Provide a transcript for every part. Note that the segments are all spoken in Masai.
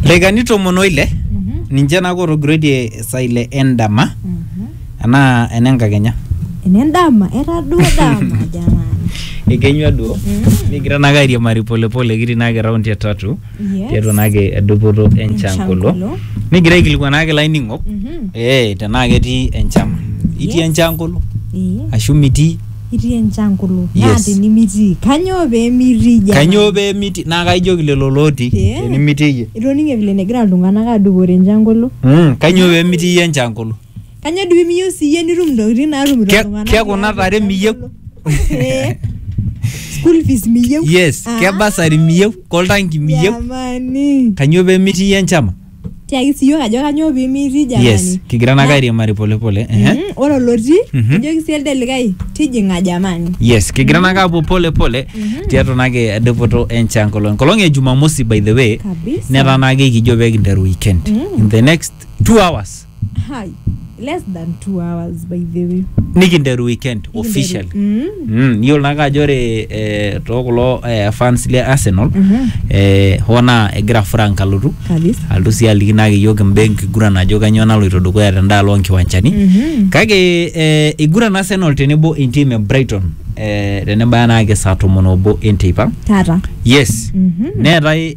Lekani tomon oile ninche naa kotogirietie saa ile endama anaa enenkakenya. Ene ndama, era duo dama jamani. Ekenyua duo nikigira naake airiamari polepole kitii naake raundi e tatu Yes. tiatua naake edupoto enchan Enchan kolo kolo. nikigira aikilikuan naake laining'ok Mhm. ee tenaa ketii enchan itii Yes. enchan kolo Ee. ashu mitii itii enchankulu Yes. naa tinimitii kanyoo pee mitii jamani? kanyoo pee miti naa kaijoki lelo looti Pee? tenimitii iyie itoning'e vile negira iltung'anak adupore enchankulu Mm, kanyoo pee mitii iyie enchankulu kanyoo doi miyieu siyie nitum intokitin naatumito Ke- iltung'anak ke kuna tiatua tare miyieu? enchankulu? Eh, school fees miyieu yes Ah, kebasari miyieu koltanki miyieu jamani kanyoo pee mitii iyie enchama tiaki siyiok ajo kanyoo pimitii jamani yes kigira naake Na- airiamari polepole ehe. Mm, ore olotii Mhm. ejoki sii elde likae tijing'a jamani yes kigira naake apuo polepole tiatua naake dupoto enchan kolong enkolong e jumamosi by the way kabisa netaa naake kijo pee kinteru weekend Mm. in the next two hours Hi. Less than two hours, by the way. nikinteru weekend official Mm. Mm, iyiolo naake ajo ore eh, too kulo eh, fans le Arsenal eh, hoo naa egira Frank alotu Kabisa. alotu sii aliki naake iyiook imbaa enkiguran ajo kanyioo naloito dukuya tendaalo onkiwanchani Mhm. kake eh, iguran Arsenal tenebo entim e Brighton eh, tenebaya naake saa tomon obo enteipa Tata. yes Mhm. neetae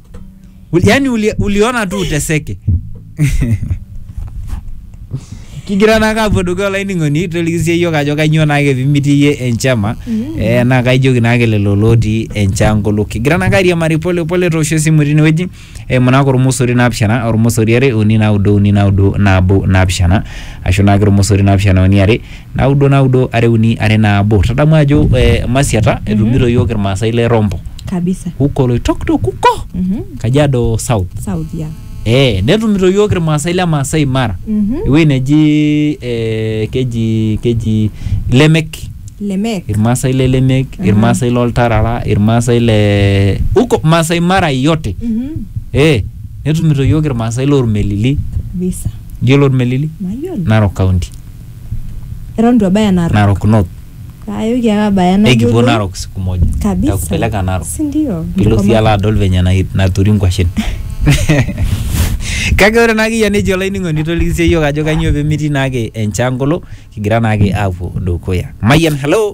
Uli- yaani uli, uliona tu uteseke kigira naa kaapuo dukuya olainining'oni tolikisie yiok ajo kainyoo naake pimitii iyie enchama eh, naa kaijoki naake lelo lotii enchangolo kigira naake airiamari pole pole toosho esimu tinewueji eimu naake ormosori naapishana ormosori are uni naudo uni naudo nabo naapishana ashu naake ormosori naapishana uni are naudo naudo are uni are nabo tadamu ajo eh, masiata etumito yiok irmaasai le rombo kabisa huko oloitoktok huko Mhm. kajiado south south ya eh, netumito yiok irmaasai le maasai mara Mhm. ewueji neji eh, keji keji lemek lemek irmaasai le lemek irmaasai loltarara irmaasai le huko maasai mara yote Mhm. eh, netumito yiok irmaasai lormelili kabisa yiolo ormelili mayiolo narok county eton itu abaya narok Narok North. ayoki ake abaya Ekipuo nayiolou Narok siku moja. kabisa Nitakupeleka Narok. si ndio Pilo Nikoma- sii alo adol venye na- naturi nkwashen. Kake ore naake iyie nejo olainining'oni toliki sii iyiok ajo kanyoo pemetii naake enchangolo kigira naake aapuo dukuya. Mayian, hello.